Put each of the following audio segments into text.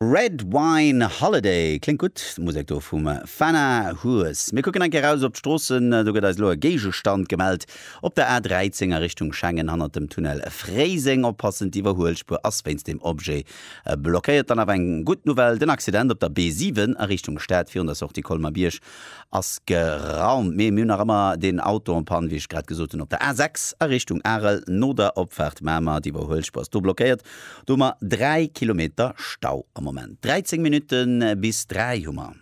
Red Wine Holiday, kléngt gutt, d'Musek do vum Fana Hues. Mir kucken eng Kéier raus op d'Stroossen, do gëtt eis elo e Géigestand gemellt op der A 13 a Richtung Schengen hannert dem Tunnel Fréiseng. Oppassen, d'Iwwerhuelspuer ass wéinst dem Objet blockéiert. Dann awer eng gutt Nouvelle, den Accident op der B 7 a Richtung Stad virun der Sortie Colmer-Bierg Ass geraumt, mee mir hunn nach ëmmer deen Auto en panne, wéi ech grad gesot hunn, op der A6 a Richtung Arel, no der Opfaart Mamer, déi bei Huelschpo ass do blockéiert. Do hu mer 3 Kilometer Stau am Moment. 13 Minutte bis 3 hu mer.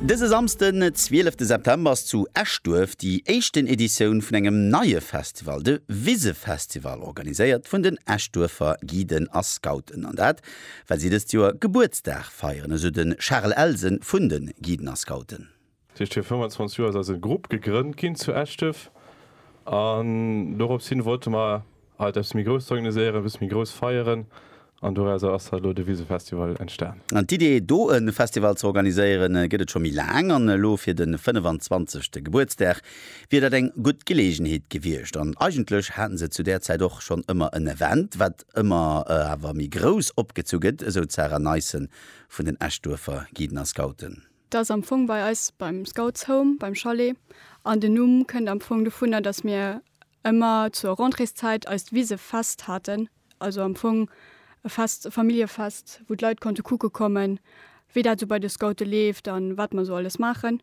Dëse Samsden, 12 September ass zu Eschduerf déi éischten Editioun vun engem neie Festival, de Wisefestival, organiséiert vun den Eschduerfer Guiden a Scouten, an dat, Well si dëst Joer Gebuertsdag feieren, esou de Charel Elsen vun de Guiden a Scouten. Tëscht vir 25 Joer ass eise Grupp gegrënnt ginn zu Eschdef an dorops hin wollte mer alt eppes méi Grousst organiséieren, eppes méi grouss feieren an dorausser ass halt elo de Wisefestival entstan. An d'Idee do e Festival ze organiséieren gëtt et scho méi laang an elo fir de 25. Gebuertsdag wier dat eng gutt Geleegenheet gewiescht an eigentlech haten se zu där Zäit och schonn ëmmer en Event wat ëmmer awer méi grouss opgezu gëtt, esou d'Sarah Neissen vun den Eschduerfer Guiden a Scouten. Dat ass am Fong bei eis beim Scouts Home, beim Chalet. An den Numm kënnt am Fong dovunner, datt mir ëmmer zur Rentréeszäit eist Wisefest haten, also am Fong e Fest, e Familljefest, wou d'Leit konnte kucke kommen, wéi dat esou bei de Scoute leeft a wat mer esou alles maachen.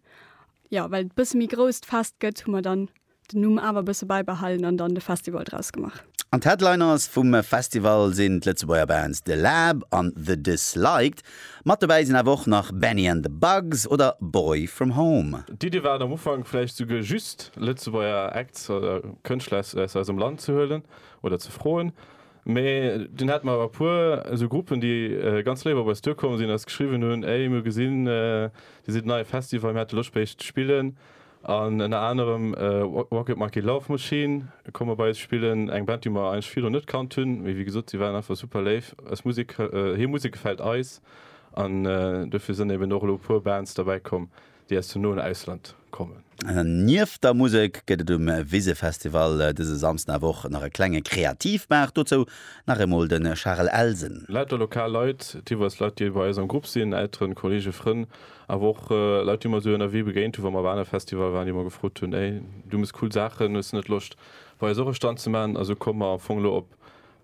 Jo, well et e bësse méi grouss d'Fest gëtt, hu mer dann Den Numm awer e bësse bäibehalen an dann de Festival draus gemaach. An d'Headliners vum Festival sinn d'Lëtzebuerger Bands The Lab an The Disliked. Mat dobäi sinn awer och nach Bennie and the Bugs oder Boy From Home. D'Iddi war et am Ufank vläicht souguer just Lëtzebuerger Acts oder Kënschtler aus aus eisem Land ze huelen oder ze froen. Mee dunn hate mer awer e puer esou Gruppen, déi ganz léif op eis duerkomm sinn, eis geschriwwen hunn, Ey, mir hu gesinn, Dir sidd en neie Festival, mir hätte Loscht bei iech ze spillen. An ënner anerem Rocket Monkey Love Machine komme bei eis spillen, eng Band, déi mer eigentlech virdrun net kannt hunn, mee wéi gesot, si waren einfach super léif. Eis Musek, hir Musek gefält eis an dofir sënn eben och elo e puer Bands derbäi komm, déi aus dem noen Ausland kommen. Nieft der Musek gëtt et um Wisefestival dëse Samsden awer och nach e klenge Kreativmaart. Dozou nach eemol de Charel Elsen. Lauter lokal Leit, deelweis Leit, déi bei eis am Grupp sinn, Elteren, Kollege, Frënn, Awer och Leit, déi mer esou ënnerwee begéint hunn, wa mer op anere Festivalle waren, déi mer gefrot hunn, Hey, du mëss cool Saachen, hues de net Loscht bei eis och e Stand ze maachen? A sou komme mer am Fong elo op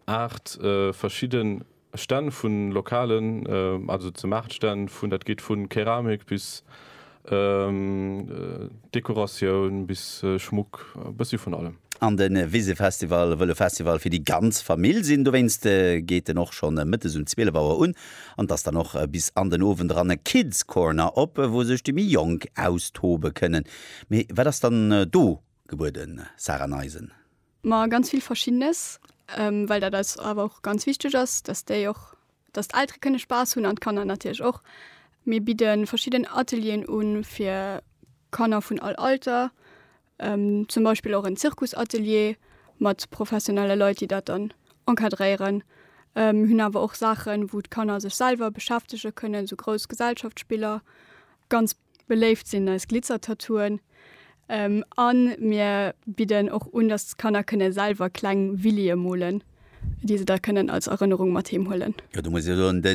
aacht verschidde Stänn vu lokalen, also ze Maartstänn, vun, dat geet vu Keramik bis Dekoratioun bis Schmuck, e bëssi vun allem. An de Wisefestival wëll e Festival fir déi ganz Famill sinn. Dowéinst geet en och schonn mëttes um 12 Auer un an et ass dann och bis an den Owend eran e Kids Corner op, wou sech déi méi Jonk austobe kënnen. Mee wat ass dann do gebueden, Sarah Neisen? Ma ganz vill Verschiddenes, well dat eis awer och ganz wichteg ass, dass déi och, dass d'Eltere kënne Spaass hunn an d'Kanner natierlech och. Mir bidde verschidden Atelieren un fir Kanner vun all Alter. zum Beispill och en Zirkusatelier mat professionelle Leit, déi dat dann encadréieren, hunn awer och Saachen, wou d'Kanner sech selwer beschäftege kënnen, esou grouss Gesellschaftsspiller. Ganz beléift sinn eis Glitzertattooen an mir bidden och un, datt d'Kanner kënne selwer kleng Willyë molen. déi se da kënnen als Erënnerung mat heem huelen. Jo, do muss ech jo soen, de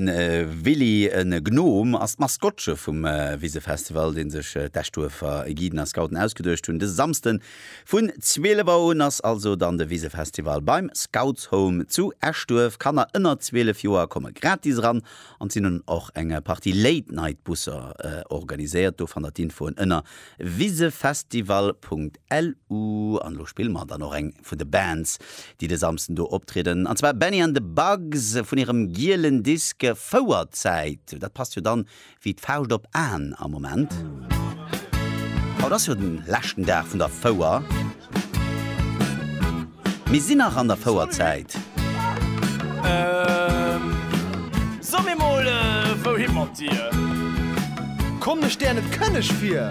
Willy, e Gnom, ass d'Maskottche vum Wisefestival, dee sech d'Eschduerfer Guiden a Scouten ausgeduecht hunn. Dëse Samsden vun 12 Auer un ass also dann de Wisefestival beim Scoutshome zu Eschduerf. Kanner ënner 12 Joer komme gratis eran an sinn hunn och eng Partie Late-Night-Busser organiséiert. Do fannt der d'Infoen ënner wisefestival.lu. LU, an elo spille mer dann och eng vun de Bands, déi de Samsden do optrieden, an zwar Bennie and the Bugs vun hirem gielen Disk Fouerzäit. Dat passt jo dann wéi d'Fauscht op Aen am Moment. Haut ass jo den leschten Dag vun der Fouer. Mir sinn nach an der Fouerzäit. So mir mol, wouhi mat dir? Komm, ech däer net kënneg fir.